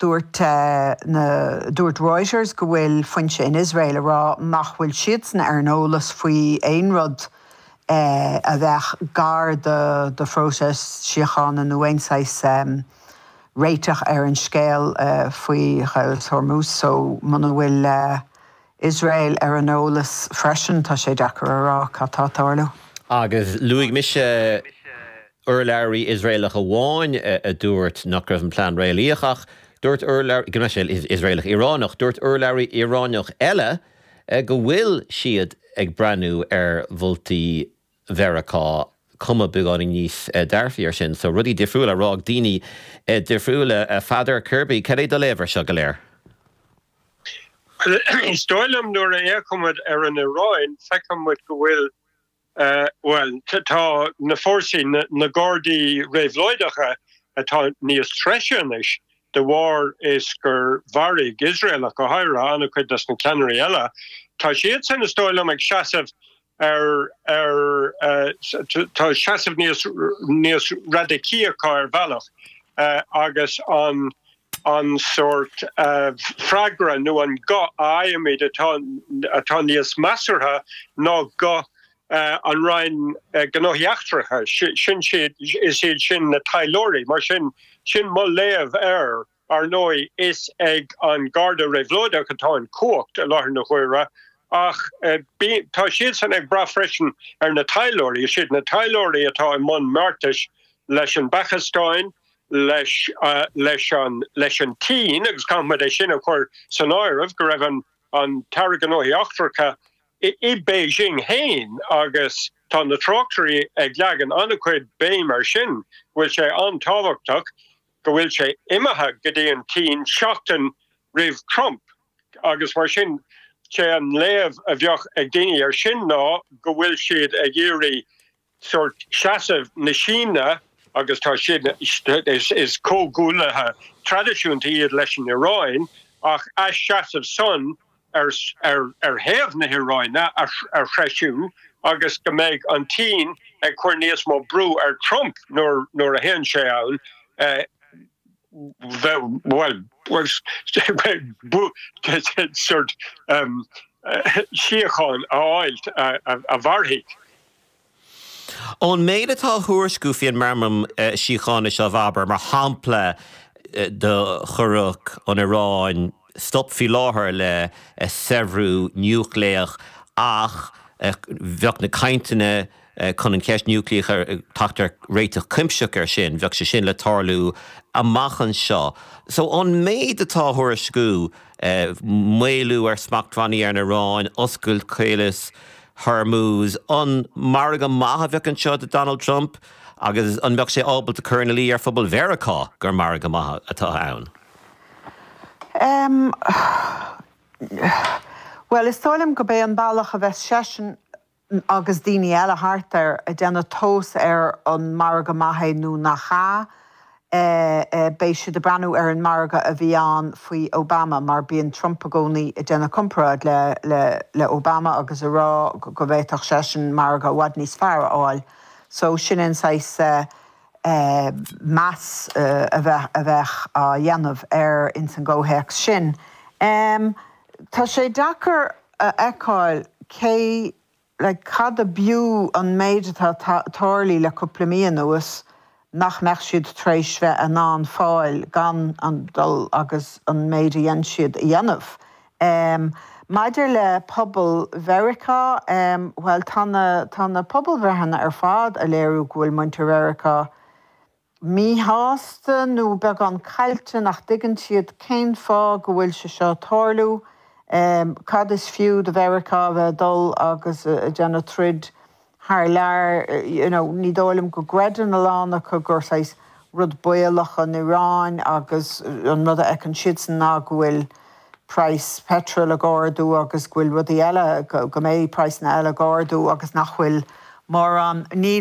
Dúirt na Dúirt Reuters go bhfuil foinse in Iosrael ag rá nach bhfuil siadsan ar an eolas faoi aon rud a bheadh gar do phróiseas síochána nó aon saghas réiteach ar an scéal faoi Chaolas Hormuz. So muna bhfuil Iosrael ar an eolas freisin, tá sé deacair a rá cad tá ag tarlú. Agus luaigh mise. Urlabhraí Iosraelach amháin a dúirt nach raibh an plean réalaíoch ach dúirt urlabhraí, go mbeadh sé Iosraelach Iaráineach, dúirt urlabhraí Iaráineach eile go bhfuil siad ag breathnú ar mholtaí Mheiriceá, cuma beagáinín níos dearfaí ar sin. So rudaí difriúla a rá ag daoine difriúla. A Pheadar Kirby, cad é do léamh ar seo go léir? Bhuel, is dóigh liom nuair a fhéachaimid ar an Iaráin, feiceann muid go bhfuil Bhuel, tá na fórsaí, na gardaí réabhlóideacha atá níos treise anois de bharr is gur mharaigh Iosraelach, go háirithe, an-chuid dos na ceannairí eile, tá siadsan, is dóigh liom, ag seasamh ar, ar, tá seasamh níos radacaí acu ar bhealach agus an. an sórt freagra nó an guth a fhaighimid atá níos measartha ná guth an Roinn Gnóthaí Eachtracha. Sin siad, is iad sin na taidhleoirí. Mar sin, sin mo léamh air. Ar ndóigh, is ag an Garda Réabhlóideach atá an chumhacht i láthair na huaire ach tá siadsan ag brath freisin ar na taidhleoirí. Is iad na taidhleoirí atá i mbun beartais leis an bPacastáin, leis, leis an, leis an tSín agus caithfimid é sin a chur san áireamh go raibh an tAire Gnóthaí Eachtracha i Beijing féin agus tá na tráchtairí ag leagan an-chuid béim ar sin go bhfuil sé an-tábhachtach go bhfuil sé imithe go dtí an tSín seachtain roimh Trump agus mar sin sé an léamh a bheadh ag daoine air sin ná go bhfuil siad ag iarraidh sórt seasamh na Síne agus tá siad, is comhghuaillithe traidisiúnta iad leis an Iaráin ach an seasamh san ar thaobh na hIaráine a threisiú agus go mbeidh an tSín ag cur níos mó brú ar Trump nuair a théann sé ann, bhuel, sórt síocháin a fháilt a mhairfidh. Ón méid atá a thuairisciú faoin Meamram Síochána seo b'fhéidir mar shampla go gcuirfeadh an Iaráin stop faoi láthair le saibhriú núicléach ach bheadh na cainteanna chun an cheist núicléach a theacht ar réiteach cuimsitheach air sin, bheadh sé sin le tarlú amach anseo. So ón méid atá a thuairisciú, maolú ar smachtbhannaí ar an Iaráin, oscailt caolas, Hormuz, ar margadh maith a bheadh anseo do Donald Trump agus an mbeadh sé ábalta cur ina luí ar phobal Mheiriceá gur margadh maith atá ann? Em. bhuel, is dóigh liom gurb é an bealach a bheidh seisean agus daoine eile thart air ag déanamh tomhas ar an margadh maith é nó nach ea. e Beidh siad ag breathnú ar an margadh a bhí ann faoi Obama mar bíonn Trump i gcónaí ag déanamh comparáid le Obama agus ag rá go bhféadfadh seisean margadh i bhfad níos fearr a fháil so sin é an saghas meas a bheadh á dhéanamh air ins an gcomhthéacs sin. Tá sé deacair a fheiceáil cé like, cad a b'fhiú an méid atá tarlaithe le cúpla mí anuas nach mbeadh siad tar éis bheith in ann a fháil gan an dul agus an méid a dhein siad a dhéanamh. Em, maidir le pobal Mheiriceá, em, bhuel, tá na, tá na pobalbhreitheanna ar fad a léiriú go bhfuil muintir Mheiriceá, míshásta nó beagán caillte nach dtuigeann siad cén fáth go bhfuil sé seo ag tarlú, cad is fiú do Mheiriceá a bheith ag dul agus ag déanamh troid thar lear, you know ní dóigh liom go gcreideann a lán acu gur saghas rud baolach an Iaráin agus an rud a fheiceann siadsan ná go bhfuil praghas peitril ag ardú agus go bhfuil rudaí eile, go mbeidh praghsanna eile ag ardú agus nach bhfuil mórán, níl.